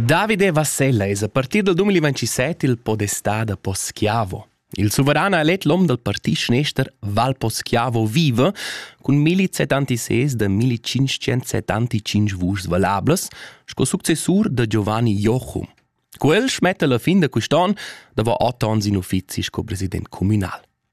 Davide Vassella es a partir dal 2017 il podestà da Poschiavo. Il suveran ha elet l'om dal parti schnester Val Poschiavo Vive cun 1076 da 1575 vuschs valablas sco successur da Giovanni Jochum. Quel smetta la fin da quest'on da va otto ans in uffizi sco president communal.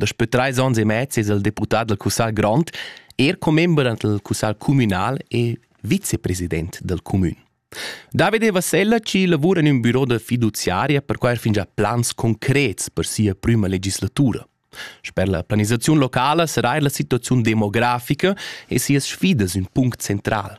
Daspö trais ons e mez es el deputà dal cussagl grond, er commember dal cussagl cumünal e vicepresident dal cumün. Davide Vassella ci lavura in ün büro da fiduziaria per quai fingià plans concrets per sia prüma legislatura. Sper la planisaziun locala sarà er la situaziun demografica e sias sfidas ün punct central.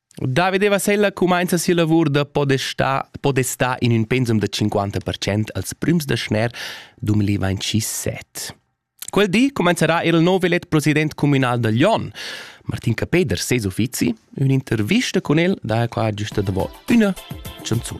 Davide Vasella cumainza sia lavur da podestar, podestar in ün pensum da 50% als prüms da schner 2027. Quel di comencerà er il nov elet president communal da Lyon, Martin Capeder, ses uffizi, ün'intervista con el, da qua giusta davo üna chanzun.